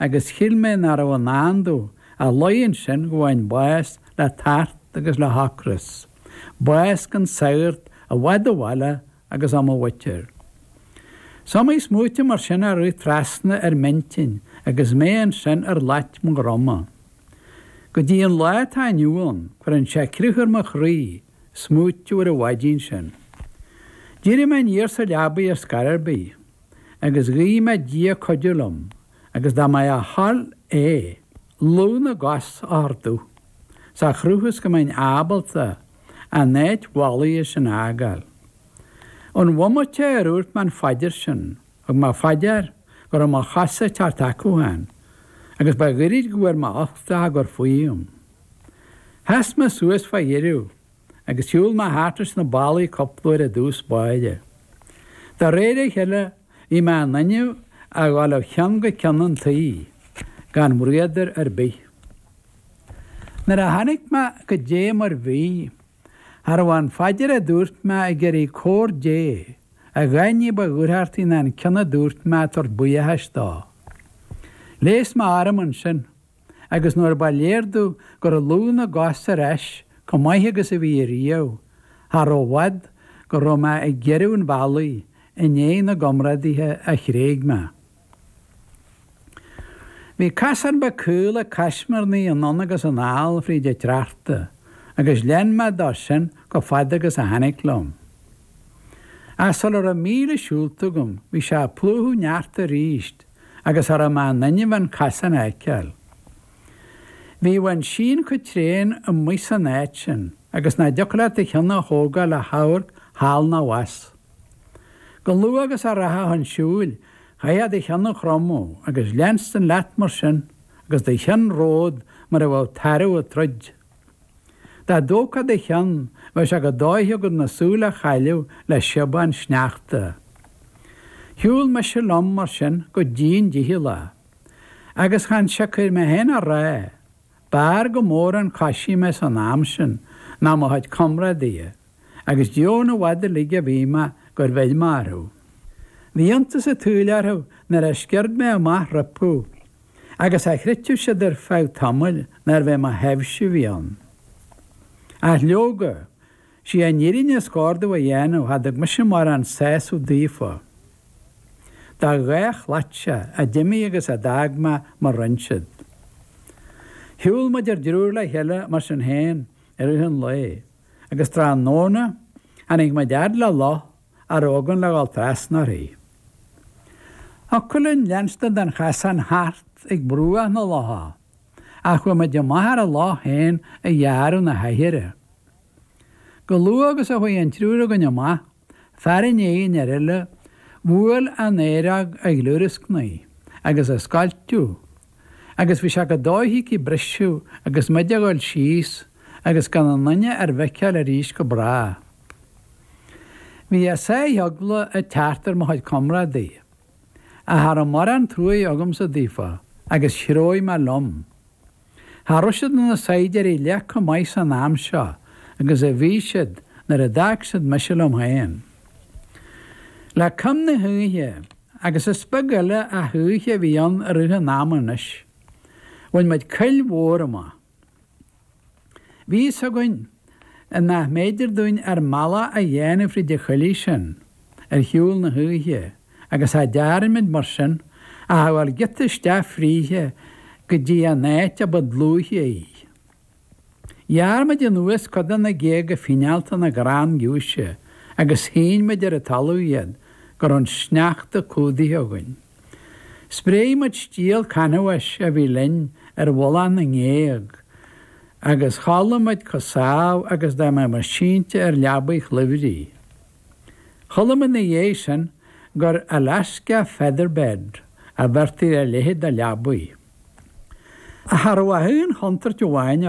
agus shíl mé nach raibh i ndán domh ach luí ansin go bhfaighinn bás le tart agus le hocras, bás gan sagart, i bhfad ó bhaile agus ó mo mhuintir. Is iomaí smaoitiú mar sin a rith trasna ar m'intinn agus mé ansin ar shlait mo dhroma. Go dtí an lá atá inniu ann, cuireann sé crith ar mo chroí, smaoitiú ar an mhaidin sin. D'éirigh mé aniar sa leabaidh ar scor ar bith. agus ghuigh mé Dia cuidiú liom agus dá mb'é a thoil é, lúth na gcos a thabhairt domh, sa chruth is go mbeinn ábalta an áit mhallaithe sin a fhágáil. An bhomaite ar dhúirt mé an phaidir sin, thug mé fá dear go raibh mo chosa ag teacht chucu féin, agus ba ghairid go bhfuair mé uchtach a gcur faoim. Sheas mé suas fá dheireadh agus shiúl mé thart leis na ballaí cúpla uair i dtús báire. De réir a chéile, bhí mé in innimh a dhul ó cheann go ceann an tí gan braodar ar bith. Nuair a tháinig mé go dtí mar bhí, cha raibh an phaidir a dúirt mé ag iarraidh cabhair Dé, a dhath ní ba dhúthrachtaí ná an ceann a dúirt mé ag tabhairt buíochais dó. Ghléas mé orm ansin. agus nuair ba léir domh go raibh lúth na gcos ar ais chomh maith agus a bhí ariamh, cha raibh i bhfad go raibh mé ag giorrú an bhealaigh i ndiaidh na gcomrádaithe a thréig mé. Bhí casán beag caol ag caismirnigh anonn agus anall fríd an tsneachta, agus lean mé dó sin chomh fada agus a tháinig liom. Ach sula raibh míle siúlta agam, bhí sé ag plúchadh sneachta aríst, agus cha raibh mé in innimh an casán a fheiceáil. Bhíodh an síon chomh tréan amuigh san áit sin agus nach dtiocfadh leat do cheann a thógáil le hamharc thall ná abhus. Chomh luath agus a rachfá chun siúil, chaithfeá do cheann a chromadh agus leanstan leat mar sin agus do cheann romhat mar a bheadh tarbh ag troid. Dá dtógthá do cheann, bheadh sé chomh dóiche agat na súile a chailleadh le síobadh an tsneachta. Shiúl mise liom, mar sin, go dian dícheallach. Agus chan siocair mé féin á rá. B'fhearr go mór an coisí mé san am sin ná mo chuid comrádaithe. agus deamhan i bhfad uilig a bhí mé gur bheir mé orthu. Bhí iontas an tsaoil orthu nuair a sciurd mé amach rompu, agus cha chreidfeadh siad ar feadh tamaill nárbh é mo thaibhse a bhí ann. Ach leoga, sí an fhírinne is gárda a dhéanamh, cha dtug mise mórán sásaimh daofa. Dá dhá chladhaire a d'imigh agus a d'fhág mé mo roinnsead. Shiúl muid ár dtriúr le chéile mar sin féin i rith an lae. agus tráthnóna tháinig muid a fhad le loch a raibh againn le dhul trasna uirthi. Thiocfadh linn leanstan den chasán thart ag bruach na locha, ach chuaigh muid amach ar an loch féin a ghearradh na haichearra. Chomh luath agus a chuaigh an triúr againn amach, Fear i ndiaidh an fhir eile bhuail an oighreog ag gliúrascnaigh agus ag scoilteadh agus bhí sé chomh dóiche aici briseadh agus muid a ghabháil síos agus gan aon duine ár bhfeiceáil arís go brách. Bhí a sáith eagla ag teacht ar mo chuid comrádaithe. Cha raibh mórán truaighe agamsa daofa agus threabhaigh mé liom. Cha raibh siad ina saighdiúirí leath chomh maith san am seo agus a bhí siad nuair a d'fhág siad mise liom féin. Le coim na hoíche, agus is beag eile ach oíche a bhí ann i rith an ama anois, bhain muid coill mhór amach. Bhí a fhios againn. nach mb'fhéidir dúinn ár mbealach a dhéanamh fríd an choillidh sin, ar shiúl na hoíche, agus cha dearn muid, mar sin, ach a ghabháil giota isteach fríthi go dtí an áit a ba dlúithe í. Ghearr muid anuas cuid de na géaga fíneálta na gcrann giúise agus shín muid ar an talamh iad go raibh an sneachta cumhdaithe againn. Spréigh muid stiall canbháis a bhí linn ar mhullach na ngéag agus chodlaigh muid chomh sámh agus dá mbeadh muid sínte ar leabaidh chluimhrí. Chuala muid ina dhiaidh sin gur Alaska featherbed a bheirtí ar a leithéid de leabaidh. Cha raibh ach aon chontúirt amháin,